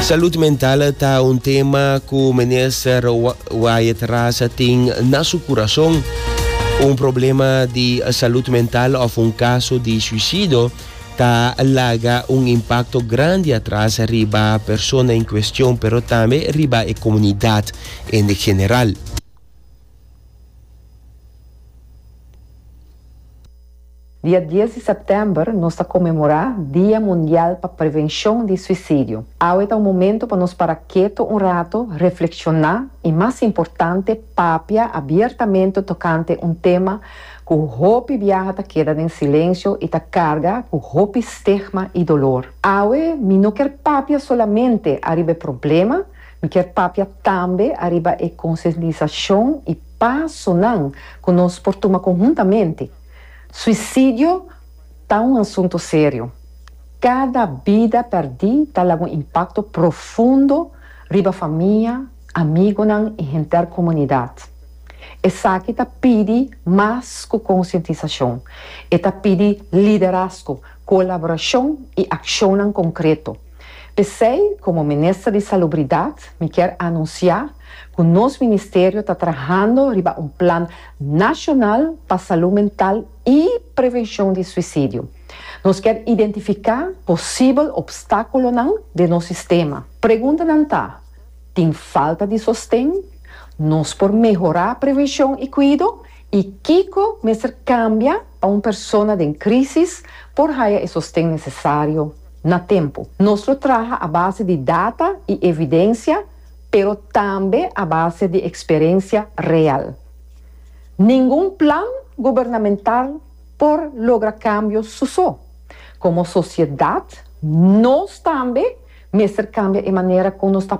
Salud mental ta un tema cu minister Wyatt Ras tin na su curason. Un problema di salud mental of un caso di suicido ta laga un impacto grandi atras riba persona en cuestion pero tambe riba e comunidad en general. Dia dies di sèptèmber nos ta konmemorá Dia Mundial pa Prevenshon di Suisidio. Awe ta un momentu pa nos para ketu un ratu, reflekshoná i mas importante papia abiertamente tokante un tema ku hopi biaha ta keda den silensio i ta karga ku hopi stigma i dolor. Awe mi no kier papia solamente ariba e problema, mi kier papia tambe ariba e konsientisashon i pasonan ku nos por tuma konhuntamente. Suisidio ta un asuntu serio. Kada bida pèrdí ta laga un impakto profundo riba famia, amigunan i henter komunidat. Esaki ta pidi mas ku konsientisashon. E ta pidi liderazgo, kolaborashon i akshonnan konkreto. P'esei, komo Minister di Salubridat, mi kier anunsiá ku nos ministerio ta trahando riba un plan Nashonal pa Salú Mental i Prevenshon di Suisidio. Nos kier identifiká posibel opstákulonan den nos sistema. Preguntanan ta, Tin falta di sosten? Nos por mehorá prevenshon i kuido? I kiko mester kambia pa un persona den krísis por haya e sosten nesesario na tempu? Nos lo traha a base di data i evidensia pero tambe a base di eksperensia real. Ningun plan gubernamental por logra kambio su so. Komo sosiedat nos tambe mester kambia e manera ku nos ta.